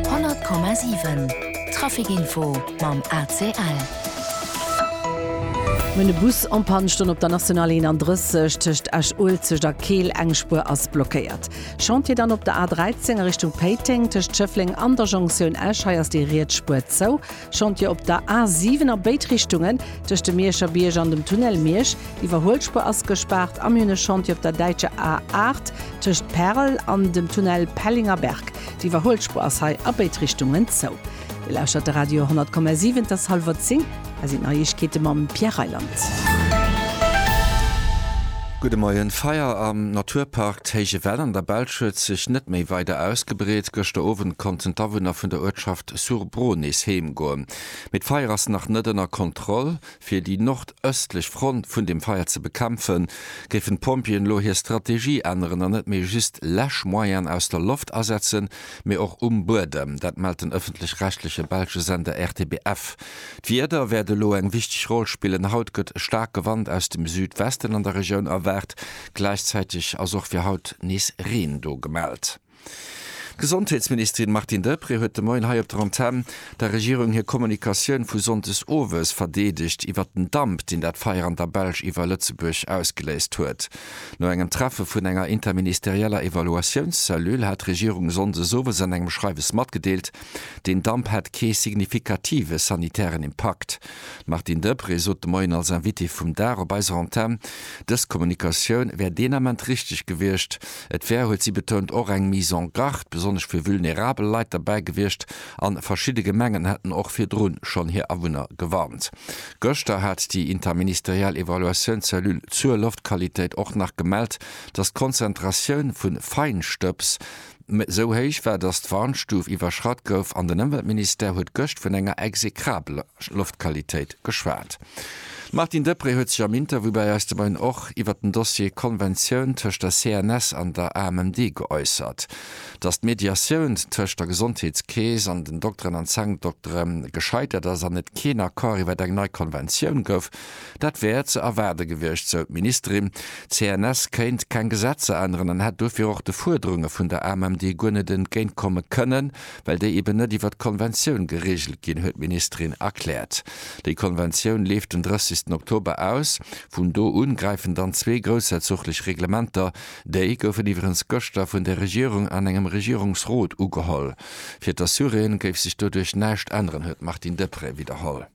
100,7 Trafic info mam ACL. Mir hunn e Bus en Panne stoen op der National 31 tëscht Esch-Uelzecht a Keel. Eng Spuer ass blockéiert. Chantier dann op der A 13 a Richtung Péiteng tëscht Schëffleng an der Jonktioun Esch. Hei ass déi riets Spuer zou. Chantier op der A 7 a béid Richtungen, tëscht dem Mierscher Bierg an dem Tunnel Miersch. D'Iwwerhuelspuer ass gespaart. Am June Chantier op der däitscher A 8, tëscht Pärel an dem Tunnel Pellinger-Berg. D'Iwwerhuelspuer ass hei a béid Richtungen zou. Dir lauschtert de Radio 10,7. Et ass hallwer 10, hei sinn d'Neiegkeete mam Pierre Reyland. Gudde Moien. D'Feier am Naturpark d'Héije Well an der Belsch huet sech net méi weider ausgebreet. Gëschter Owend konnten d'Awunner vun der Uertschaft. Sur Bron nees heemgoen, mee d'Feier ass nach net ënner Kontroll. Fir déi nordëstlech Front vun dem Feier ze bekämpfen, géifen d'Pompjeeën elo hir Strategie änneren an net méi just Läschmoyenne aus der Loft asetzen, mee och um Buedem. Dat mellt den ëffentlech-rechtleche belsche Sender RTBF. D'Wieder wäert elo eng wichteg Roll spillen. Haut gëtt e staarke Wand aus dem Südwesten an der Regioun erwaart, gläichzäiteg ass och fir haut nees Reen do gemellt. D'Gesondheetsministerin Martine Deprez huet de Moien hei op der Antenn der Regierung hir Kommunikatioun vu sonndes owes verdeedegt iwwert den Damp, deen dat Feier an der Belsch iwwer Lëtzebuerg ausgeléist huet. No engem Treffe vun enger interministerieller Evaluatiounscellule hat d'Regierung sonndes owes an engem Schreiwes matgedeelt, den Damp hätt kee signifikative sanitären Impakt. D'Martine Deprez sot de Moien als Invitée vum Dag op eiser Antenn, dës Kommunikatioun wär deen Ament richteg gewiescht, Et wär, huet si betount, och eng Mise en garde besonnesch fir vulnerabel Leit derbäi gewiescht a verschidde Gemengen hätten och virdru schonn hir Awunner gewarnt. Gëschter hat déi interministeriell Evaluatiounscellule zur Loftqualitéit och nach gemellt, datt d'Konzentratioun vu Feinstëbs esou héich war, datt d'Warnstuf iwwerschratt gouf an den Ëmweltministère huet gëscht vun enger exekrabeler Loftqualitéit geschwat. D'Martine Deprez huet sech am Interview bei eis de Moien och iwwert den Dossier Konventioun tëscht der CNS an der AMMD geäussert. Datt d'Mediatioun tëscht der Gesondheetskeess an den Dokteren an Zankdoktere gescheitert ass an et keen Accord iwwert eng nei Konventioun gouf, dat wär ze erwaarde gewiescht, sou d'Ministerin. D'CNS kéint keng Gesetzer änneren an hätt dofir och de Fuerderunge vun der AMMD guer net entgéintkomme kënnen. well déi eben net iwwert d'Konventioun gereegelt ginn, huet d'Ministerin erkläert. Déi Konventioun leeft den 30 Oktober aus. Vun do u gräifen dann zwee groussherzoglech Reglementer. Déi goufen iwweregens gëschter vun der Regierung an engem Regierungsrot ugeholl. Fir d'Assuréen géif sech doduerch näischt änneren, huet d'Martine Deprez widderholl.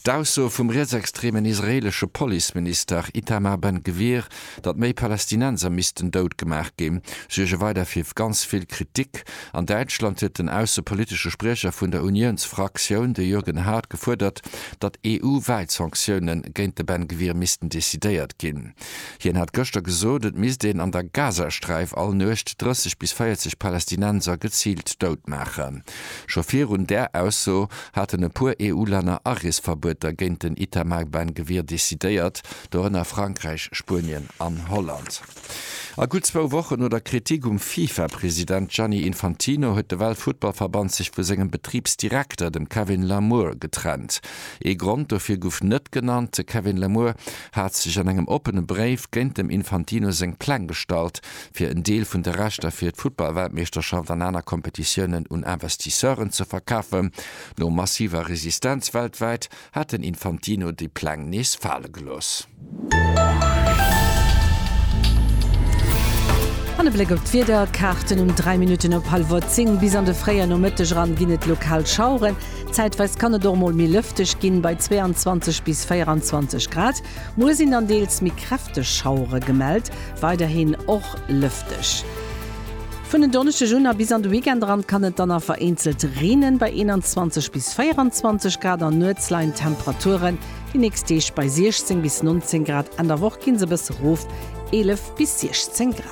D'Ausso vum rietsextremen israeelesche Policeminister Itamar Ben Gvir, datt méi Palästinenser missten dout gemaach ginn, suerge weider fir ganz vill Kritik. An Däitschland huet den aussepolitesche Spriecher vun der Uniounsfraktioun, de Jürgen Haart, gefuerdert, datt EU-wäit Sanktioune géint de Ben Gvir missten decidéiert ginn. Hien hat gëschter gesot, et misst een an der Gazasträif all Nuecht 30 bis 40 Palästinenser geziilt dout maachen. Scho virun där Ausso haten e puer EU-Länner Areesverbueter géint den Itamar Ben Gvir decidéiert, dorënner Frankräich, Spuenien an Holland. A gutt zwou Wochen no der Kritik um FIFA-President Gianni Infantino huet de Weltfuttballverband sech vu sengem Betribsdirekter, dem Kevin Lamour, getrennt. Ee Grond dofir guff net genannt. De Kevin Lamour hat sech an engem oppene Bréif géint dem Infantino seng Pläng gestallt, fir en Deel vun de Rechter fir d'Futtballweltmeeschterschaft an aner Kompetitiounen un Investisseuren ze verkafen. No massiver Resistenz weltwäit hat den Infantino déi Pläng nees fale gelooss. An e Bléck op d'Wiederkaarten, Um 3 Minutten op hallwer 10 bis an de fréie Nomëtteg eran ginn et lokal Schaueren. Zäitweis kann et och mol méi lëfteg ginn, bei 22 bis 24 Grad. Muer sinn dann deels méi kräfteg Schauere gemellt, weiderhin och lëfteg. Vun en Donneschdeg un a bis an de Weekend eran kann et dann a vereenzelt reenen, bei 21 bis 24 Grad, an nuets leien d'Temperaturen déi nächst Deeg bei 16 bis 19 Grad, Enn der Woch ginn se e bësse rof, 11 bis 16 Grad.